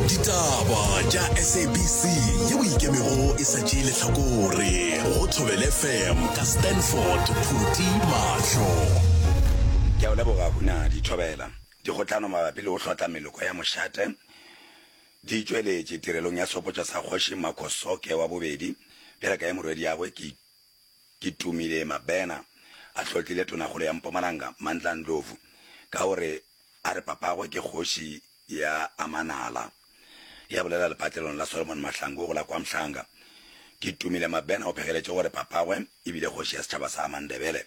ditaba tša sabc yeo ikemego e sa tšee lehlakore go thobele fm ka stanford phuti mahlo ke a o leboga huna dithobela dikgotlano mabapi le go hlotla meloko ya mošate di tšweletše tirelong ya sehopotšo sa kgoši makgosoke wa bobedi bjale ka ye morwediagwe ke ke tumile mabena a hlotlile tonakgolo ya mpumalanga mantla ndlovu ka gore A re papagwe ke kgoši ya Amanala. Ya bolela lepatlelong la Solomon Mahlangu go la KwaMhlanga. Ke Tumile Mabena o phegeletše gore papagwe e bile kgoši ya setšhaba sa Mandebele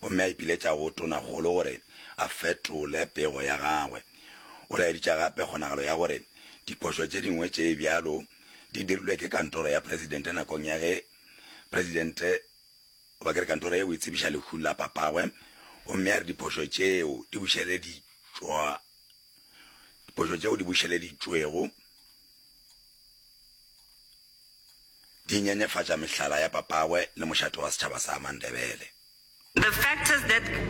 gomme a ipiletša go Tonakgolo gore a fetole pego ya gagwe. O laeditša gape kgonagalo ya gore diphošo tše dingwe tše bjalo di dirilwe ke kantoro ya Presidente nakong ya ge Presidente Goba ke re kantoro ye o e tsebiša lehung la papagwe, gomme a re diphošo tšeo di bušeleditšwa, diphošo tšeo di bušeleditšwego di nyenyefatša mehlala ya papagwe le mošate wa setšhaba sa Mandebele. The factors that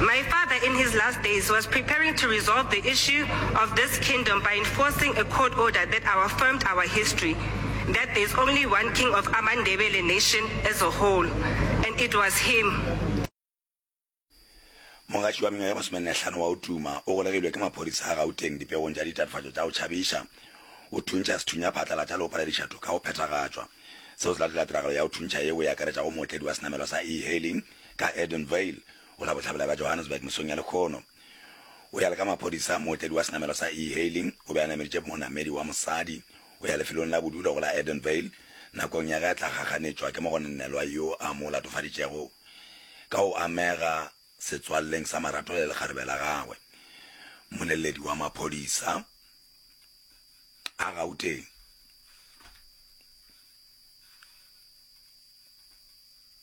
My father in his last days was preparing to resolve the issue of this kingdom by enforcing a court order that our firmed our history that there's only one king of amaNdebele nation as a whole and it was him. Mogatši wa mengwaga ye masomenne-hlano wa Utuma o golegilwe ke maphodisa a Gauteng dipegong tša ditatofatšo tša go tšhabiša. O thuntšha sethunya phatlalatša le go palediša toka go phethagatšwa. Seo se latela tiragalo ya go thuntšha yeo e akaretšago mootledi wa senamelwa sa e-hailing, ka Edenvale, go la bohlabela bja Johannesburg mesong ya lekgono. O ya le ka maphodisa, mootledi wa senamelo sa E-hailing o be a nameditše monamedi wa mosadi go ya lefelong la bodulo go la Edenvale nakong ya ge a tla gaganetšwa ke mogononelwa yo a mo latofaditšego ka go amega setswalleng sa marato le lekgarebe la gagwe. Moleledi wa maphodisa a Gauteng,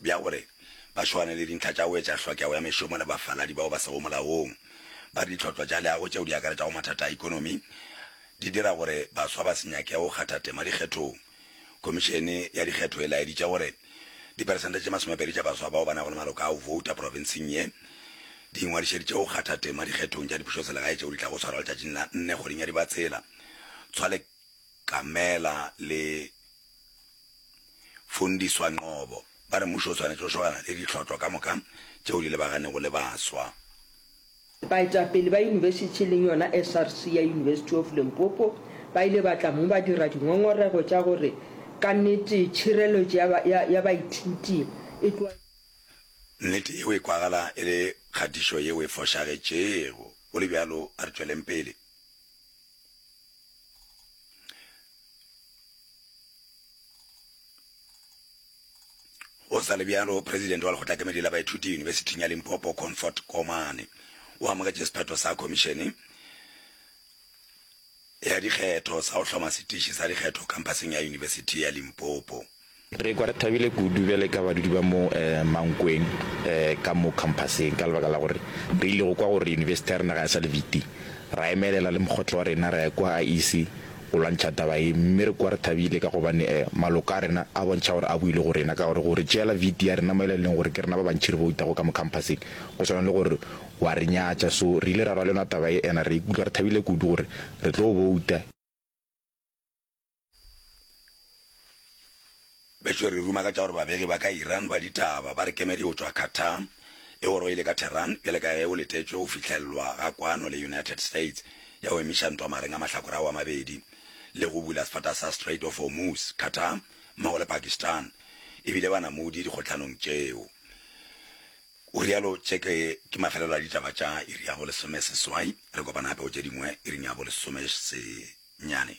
bja gore ba šoane le dintlha tša go etša hlokego ya mešomo le bafaladi bao ba sego molaong ba ditlhotlwa tša leago tšeo di akaretšago mathata a ekonomi, di dira gore baswa ba se nyake go kgatha tema dikgethong. Khomišene ya Dikgetho e laeditše gore diperesente tše masomepedi tša baswa bao ba nago le maloko a go vouta profenseng ye, di ingwadišeditše go kgatha tema dikgethong tša dipušoselegae tšeo di tlago swarwa letšatšing la nne kgweding ya Dibatsela. Tshwale Kamela le. Fundiswa Nqobo ba re mušo o swanetše go šogana le ditlhotlo ka moka tšeo di lebaganego le baswa. Baetapele ba yunibesithi e leng yona SRC ya University of Limpopo ba ile ba tla mo ba dira dingongorego tša gore ka nnete tšhireletšo ya ba, ya, ya baithuti e tlo. Nnete yeo e kwagala e le kgatišo yeo e fošagetšego. Go le bjalo, a re tšweleng pele. go sa le bjalo presidente wa lekgotla kemedi la baithuti yunibesithing ya limpopo comfort komane o amogetše sephetho sa khomišene ya dikgetho sa go hloma setiši sa dikgetho kampaseng ya yunibesithi ya limpopo Re kwa re thabile kudu bjale ka badudi ba mo Mankweng ka mo khamphaseng ka lebaka la gore re ile go kwa gore yunibesithi ya rena ga ya sa le viti. Ra emelela le mokgotlo wa rena ra ya kwa IEC go lwantšha taba ye mme re kwa re thabile ka gobane maloko a rena a bontšha gore a buile go rena ka gore go re tšeela viti ya rena mo e leng leng gore ke rena ba bantši re boutago ka mo khamphaseng go swana le gore wa re nyatša so re ile ra rwalenwa taba ye ena re ikutla re thabile kudu gore re tlo bouta betšo re ruma ka tša gore babegi ba ka iran ba ditaba ba re kemedi go tšwa qatar e gore o ile ka tehran bjale ka ge o letetšwe go fihlellwa ga kwano le united states ya go emiša ntwa mareng a mahlakore ao a mabedi le go bula sefata sa strait of hormuz qatar mmogo le pakistan e bile banamodi dikgohlanong tšeo O realo Tšeke ke mafelelo a ditaba tša iri ya bo lesomeseswai. Re kopana gape go tše dingwe iring ya bo lesomesenyane.